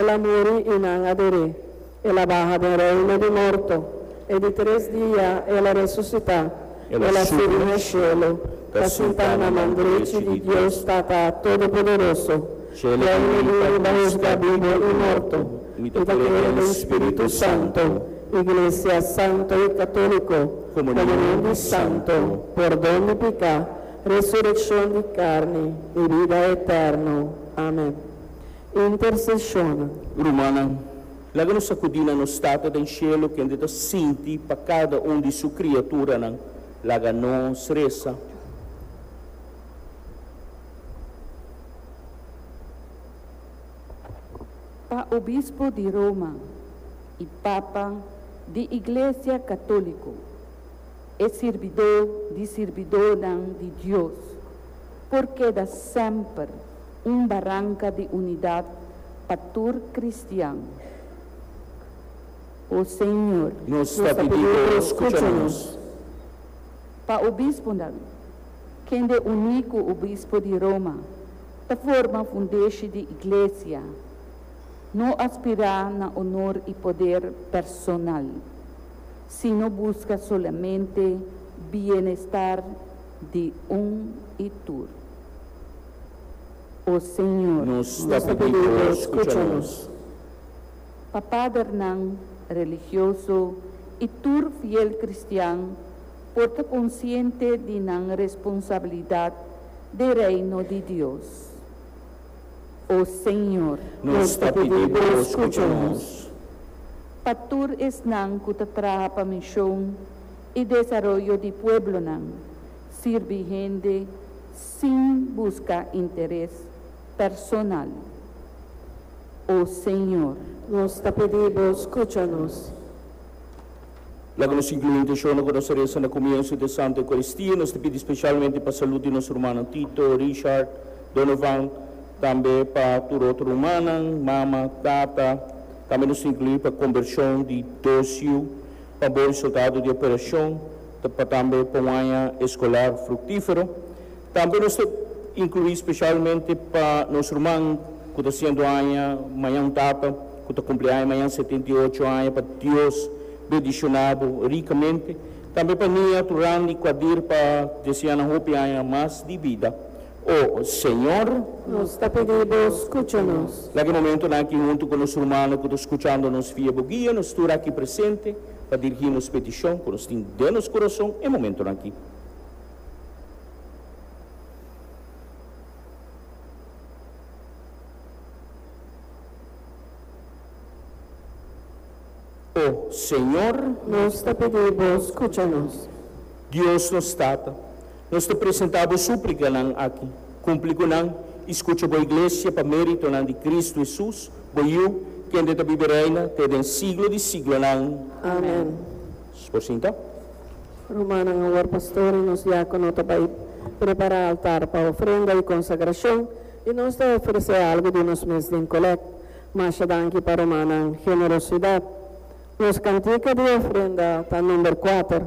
El a muri i nan a der'é. El a baha den reino di morto, e di tres dia el a resusitá. El a subi na shelu, ta sintá na man drechi di Dios Tata Todopoderoso. Shel a bini pa husga bibu i morto. Mi ta kree den Spiritu Santo, iglesia santo i katóliko, komunion di santo, pordon di piká, resurekshon di karni, i bida eterno. Amen. Interceshonan. Rumannan, laga nos akudí na nos Tata den Shelu, kende ta sinti pa kada un di Su kriaturanan. Laga nos resa. Pa Obispo di Roma i Papa di Iglesia Katóliko, e sirbidó di sirbidónan di Dios por keda semper. Un baranka di unidat pa tur kristian, O Señor. Nos ta pidi Bo skucha nos. Pa obispunan, kende uní ku obispo di Roma ta forma fundeshi di iglesia, no aspirá na onor i poder personal, sino buska solamente bienestar di un i tur. O Señor, nos ta pedí cu Bo scucha nos. Pa padernan religioso i tur fiel cristian por ta consciente di nan responsabilidad den Reino di Dios. O Señor. Nos ta pedí Bo scucha nos. Pa tur esnan cu ta traha pa mision i desaroyo di pueblonan, sirbi hende, Sin busca interes personal, o Señor. Nos ta pedí Bo scucha nos. Laga nos inclui intencionnan cu nos a reza na comienzo di e Santa Eucaristia. Nos ta pidi specialmente pa salud di nos rumannan Tito, Richard, Donovan, tambe pa tur otro rumannan, mama, tata. Tambe nos ta inclui pa conversion di Docio, pa bon resultado di operacion. pa tambe pa un aña eskolar fruktífero. Tambe nos ta inkluí spesialmente pa nos ruman ku ta sientu aña mañan, un tata ku ta kumpli aña mañan setenta i ocho aña, pa Dios bendishoná bo rikamente. Tambe pa niatu randi ku a dir pa deseá nan hopi aña mas di bida. O Señor. Nos ta pidi Bo skucha nos. Laga e momentonan aki huntu ku nos rumannan ku ta skuchando nos via Bo guia nos tur aki presente. pa dirigí nos petishon ku nos tin den nos kurason e momentunan akí. O Señor! Nos ta pidi Bo skucha nos. Dios nos Tata! Nos ta presentá bo súplikanan aki. Kumpli ku nan, i skucha bo iglesia pa méritonan di Kristu Hesus, bo Yu, kende ta biba i reina te den siglo di siglonan. Amen. Por sinta. Rumannan, awor pastor i nos diákono ta bai prepará altar pa ofrenda i konsagrashon, i nos ta ofresé algu di nos mes den kolèk. Masha danki pa rumannan generosidat. Nos kantika di ofrenda ta number kuater.